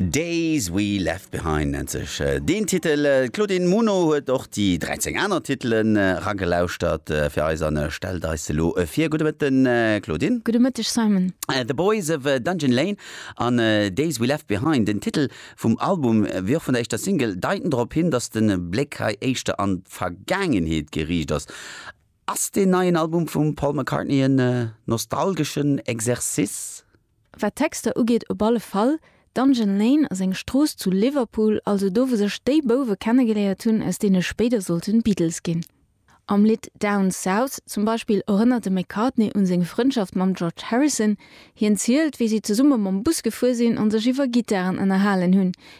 Days We Left Behind nennt sech äh, deen Titel. Äh, D'Claudine Muno huet och déi 13 aner Titelen äh, ragelauschtert äh, fir eis an äh, stellt eis se elo äh, vir. Gudde Mëtten, äh, Claudine. Gudde Mëtteg, Simon. Äh, The Boys of äh, Dungeon Lane an äh, Days We Left Behind, den Titel vum Album äh, wéi och vun der éischter Single, deiten drop hin, datt de Bléck hei éischter an d'Vergaangenheet geriicht ass. Ass deen neien Album vum Paul McCartney en äh, nostalgeschen Exercice? Wat d'Texter ugeet, op alle Fall. Dungeon Lane ass eng Strooss zu Liverpool, also do, wou sech déi Bouwe kennegeléiert hunn, aus deene spéider sollten Beatles ginn. Am Lidd Down South zum Beispill erënnert de McCartney un seng Frëndschaft mam George Harrison. Hien zielt, wéi si zesumme mam Bus gefuer sinn an sech iwwer Gittaren ënnerhalen hunn,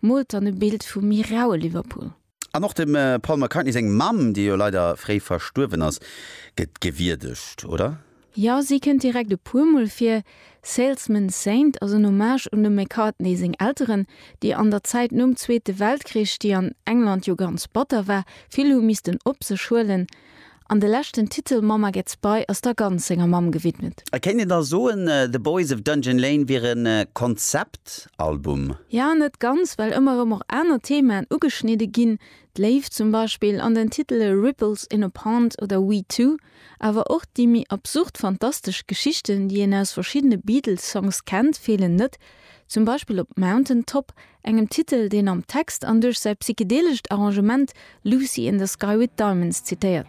Moolt dann e Bild vum méi raue Liverpool. An och dem Paul McCartney seng Mamm, déi jo leider fréi verstuerwen ass, gëtt gewierdegt, oder? Jo, si kënnt direkt e puermol vir. Salesman's Saint ass en Hommage un dem McCartney seng Elteren, déi an der Zäit nom Zweete Weltkrich, déi an England jo ganz batter war, vill hu missten op sech huelen An de leschten Titel Mama Gets By ass da ganz senger Mamm gewidmet. Et kéint een da soen, The Boys of Dungeon Lane wier e Konzeptalbum? Ja, net ganz, well ëmmer erëm och aner Themaen ugeschnidde ginn, d'Léift zum Beispill an den Titele Ripples in a Pond oder We Two, awer och déi méi absurd fantastesch Geschichten, déi een aus verschiddene Beatles-Songs kennt, feelen net, zum Beispill op Mountain Top engem Titel, deen am Text an duerch säi psychedelescht Arrangement Lucy in the Sky with Diamonds zitéiert.